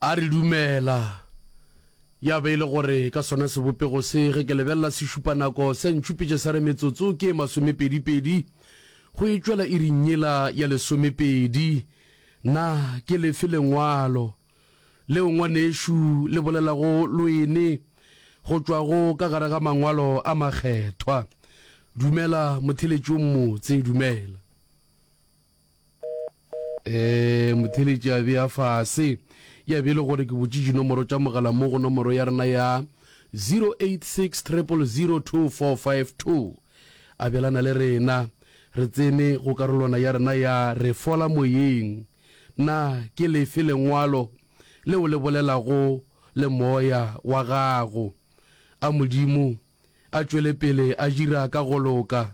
A re, Dumela. Ya be e le gore ka sona sebopego se, ge ke lebelela sešupanako, se a ntšupetša sa re metsotso ke ye masomepedipedi go e tšwela iring yela ya lesomepedi. Na ke lefe Lengwalo leo ngwanešu le bolelago loene go tšwago ka gare ga Mangwalo a Makgethwa? Dumela, motheletši o mmotse. Dumela. Ee, motheeletši a bea fase. Ya be e le gore ke botše dinomoro tša mogala mo go nomoro ya rena ya 086 000 2452. Abelana le rena. Re tsene go karolwana ya rena ya Re Fola Moyeng. Na ke lefe Lengwalo leo le bolelago le moya wa gago? A Modimo a tšwele pele a dira ka go loka.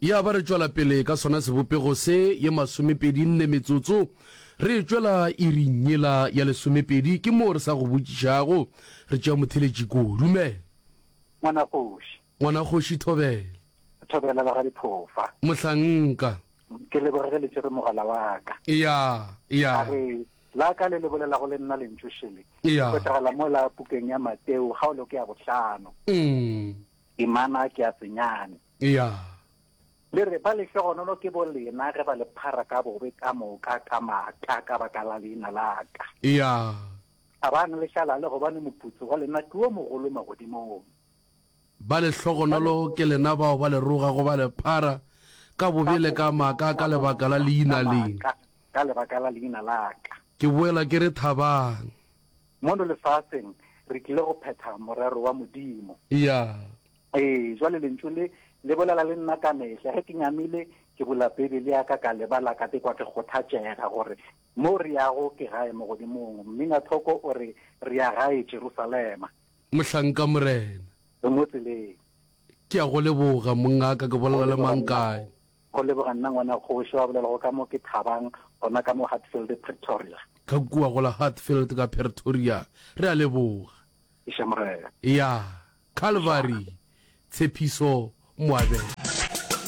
Ya ba re tšwela pele ka sona sebopego se, ye masomepedi nne metsotso, re tšwela iring yela ya lesomepedi, ke moo re sa go botšišago, re tšea motheletši kua. Dumela. Ngwanakgoši. Ngwanakgoši Thobela. Thobela ba ga Diphofa. Mohlanka. Ke leboge ge le tšere mogala wa ka. Ya, ya. A re, la ka le le bolelago le nna lentšu šele, le hwetšagala mola pukeng ya Mateo, kgaolo ke ya bohlano. Umm. Temana ke a senyane. Eya. Le re, Ba lehlogonono ke bo lena ge ba le phara ka bobe ka moka ka maaka ka baka la leina la ka. Eya. Thabang le šalale gobane moputso wa lena ke wo mogolo magodimong. Ba lehlogonolo ke lena bao ba le rogago ba le phara ka bobe le ka maaka ka lebaka la leina le. Ka lebaka la leina la ka. Ke boela ke re, Thabang. Mono lefaseng re tlile go phetha morero wa Modimo. Ya. Ee, jwale Lentšu le, le bolela le nna ka mehla ge ke nyamile, ke bula Beibele ya ka, ka leba la ka, ke kwa ke kgothatšega gore mo re yago ke gae Mogodimong. Mminathoko o re, Re ya gae Jerusalema. Mohlanka, Morena. Re mo tseleng. Ke a go leboga, mongaka. Ke bolela le mang kae? Go leboga nna ngwana kgoši wa bolelago ka mo ke thabang gona ka mo Hatfield, Pretoria. Ka kua go la Hatfield ka Pretoria. Re a leboga. Eša Morena. Ya, Calvary, Tshepiso, Moabela.